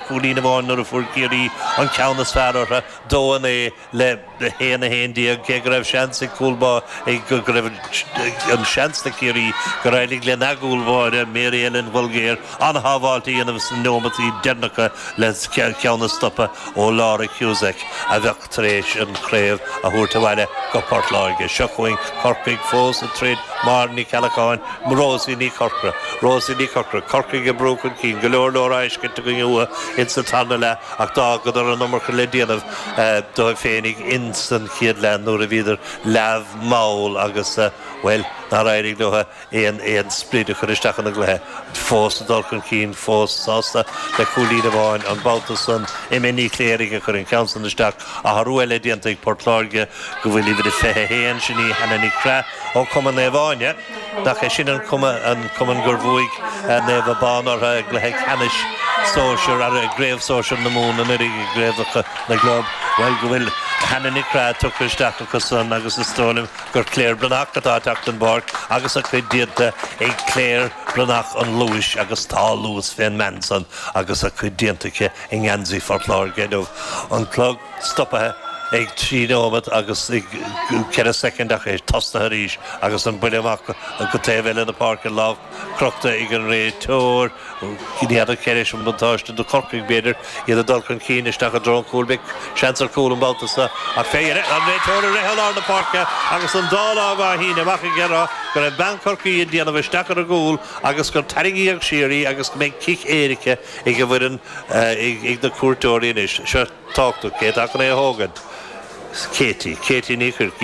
cúilín amháin nuair a fuair Ciarraí an ceann is fearr orthu, 2, 9 le 1, 11, cé go raibh seans ag cúl bá ag go raibh an seans le Ciarraí gur éirigh le n-a gcúl báire, Mary Ellen Bolger, an-shábháilt a dhéanamh sna neomataí deireanacha le ceann a stopadh ó Laura Cusack, a bheadh. tar éis an chraobh a thabhairt abhaile go Port Láirge. Seo chugainn Corcaigh fós ag troid, Máire Ní Cheallacháin, Rosie Ní Chorcra. Rosie Ní Chorcra, Corcaigh ag brú chun cinn, go leor leor á fheiscint againn uathu ins an tarna leath ach d'fhágadar an iomarca le déanamh dóibh féinig ins an chéad leath nuair a bhíodar leamh mall agus, bhuel, nár éirigh leo. aon aon sprid a chur isteach ina gcluiche. Fós ag dul chun cinn, fós sásta le cúilín amháin an babhta san. Emma Ní Chléirigh a chuir an ceann san isteach. Athrú eile déanta ag Port Láirge go bhfuil uimhir a 21, sin í Hannah Nic Craith ó Cumann Naomh Áine. Nach é sin an cumann gur bhuaigh Naomh Abán orthu i gcluiche ceannais sóisir, i gcraobh sóisir na Mumhan anuiridh, i gcraobhacha na gclub. Bhuel go bhfuil Hannah Nic Craith tugtha isteach acu san agus is dóigh liom, gur Claire Breathnach atá ag teacht den bpáirc agus a cuid déanta ag Claire Breathnach an luais agus tá luas fén mbean san agus a cuid déanta aici i ngeansaí Phort Láirge inniu. An clog stopaithe ag trí neomat agus ceithre soicind ach é tosnaithe arís agus an buille amach go taobh eile na páirce, lámh crochta ag an réiteoir. In airde, ceadaíonn sé an buntáiste do Chorcaigh, b'fhéidir, iad ag dul chun cinn isteach i dtreo an chúil. Beidh seans ar chúl an babhta seo ach an réiteoir ag rith i lár na páirce agus an dá lámh á shíneadh amach ag rá go raibh bean Chorcaí ag déanamh isteach ar an gcúl agus gur tarraingíodh siar í agus go mbeidh cic éirice ag an bhfoireann ag na cuairteoirí anois. Seo tábhachtach, cé atá chun é a thógaint? Katie. Katie Ní Chuirc.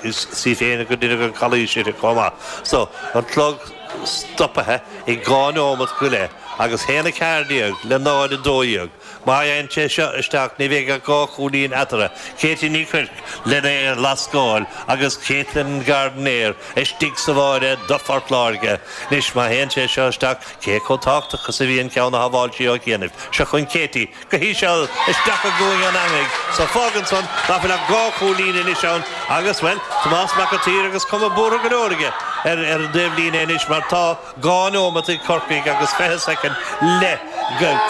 Is í féin gur deineadh an calaois uirthi chomh maith. So, an clog. stopaithe ag dhá neomat go leith agus a haon a ceathair déag le náid a dó dhéag. Má théann sé seo isteach ní bheidh ach dhá chúilín eatarthu, Katie Ní Chuirc lena lascáil agus Katelyn Gardiner istigh sa bháire do Phort Láirge. Anois má théann sé seo isteach cé chomh tábhachtach is a bhí an ceann a shábháil sí ó chianaibh? Seo chugainn Katie. go híseal, isteach i gcúinne an eangaigh. So, fágann san nach bhfuil ach dhá chúilín anois ann agus, bhuel, Tomás Mac an tSaoir agus cuma buartha go leor aige ar an dtaobhlíne anois mar tá dhá neomat ag Corcaigh agus fiche soicind le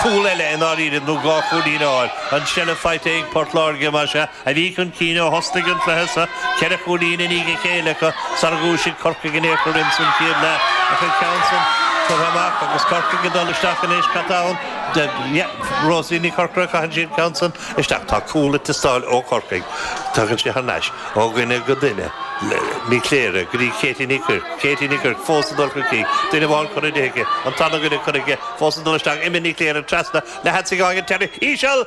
cúl eile i ndáiríre nó dhá chúilín a fháil. An tseilbh faighte ag Port Láirge, más ea, a bhí chun cinn ó thosnaigh an cluiche sa, ceithre chúilín i ndiaidh a chéile acu, sara dhúisigh Corcaigh in aon chor insan chéad leath ach an ceann san curtha amach agus Corcaigh ag dul isteach anois, cad tá ann de, yeah, Rosie Ní Chorcora, caitheann sí an ceann san isteach, tá cúl ag teastáil ó Chorcaigh, tagann sé thar n-ais ó dhuine go duine, Ní Chléirigh go dtí Katie Ní Chuirc, Katie Ní Chuirc fós ag dul chuici, duine amháin curtha di aici, an tarna duine curtha aici fós ag dul isteach, Emma Ní Chléirigh trasna, le headsaigh a fháil ag an teiní, íseal!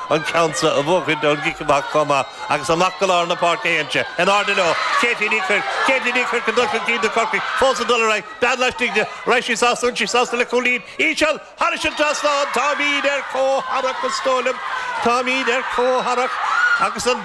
an ceann seo a bhuachaint ón gcic amach chomh maith agus amach go lár na páirce a théann sé. In airde leo, Katie Ní Chuirc, Katie Ní Chuirc, ag dul chun cinn do Chorcaigh fós ag dul ar aghaidh, bean laistigh di raibh sí sásta bhfuil sí sásta le cúilín íseal thairis an trasnán, táimid ar comhtharrac is dóigh liom, táimid ar comhtharrac agus an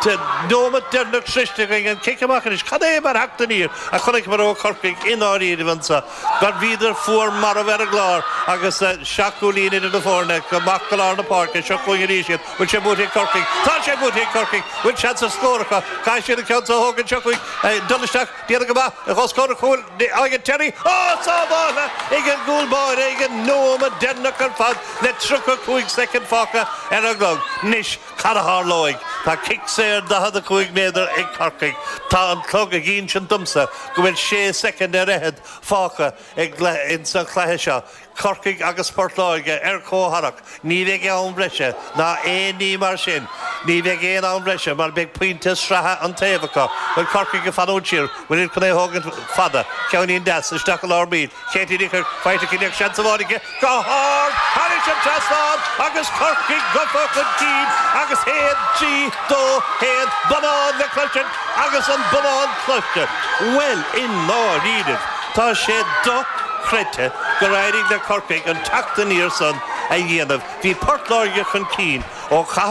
nóimeat deireanach sroichte againn, an cic amach anois, cad é mar theacht aniar a chonaiceamar ó Chorcaigh i ndáiríribh anseo. mar bhíodar fuar marbh ar an gclár agus seacht gcúilín idir na foirne amach go lár na páirce, seo chugainn arís iad, bhfuil sé buaite ag Corcaigh, tá sé buaite ag Corcaigh, bhfuil seans ar scór acu, caithfidh siad an ceann seo a thógaint, seo chugainn ag dul isteach, déanamh go maith os comhair an chúil ag an deireadh, á sábháil ag an gcúl báire ag an nóiméad deireanach ar fad le 35 soicind fágtha ar an gclog, anois. Cad a tharlóidh, tá cic saor 45 méadar ag Corcaigh. Tá an clog ag insint domsa go bhfuil sé soicind ar fhichead fágtha againn insa chluiche seo. Corcaigh agus Port Láirge ar comhtharrac, ní bheidh am bhreise ná aon ní mar sin. Ní bheidh aon am bhreise mar beidh pointe sraithe an taobh acu. Bhfuil Corcaigh ag fanúint siar, bhfuilid chun é a thógaint fada, ceann an-deas isteach i lár baill Katie Ní Chuirc, faighte aici, níl ach seans amháin aici, go hard thairis an trasnán agus Corcaigh gofa chun cinn agus 1, 3, 2, 1, Bonán le cloisint agus an bonán cloiste, bhuel i ndáiríribh tá sé do-chreidte gur éirigh le Corcaigh an teacht aniar san a dhéanamh, bhí Port Láirge chun cinn ó chaitheamh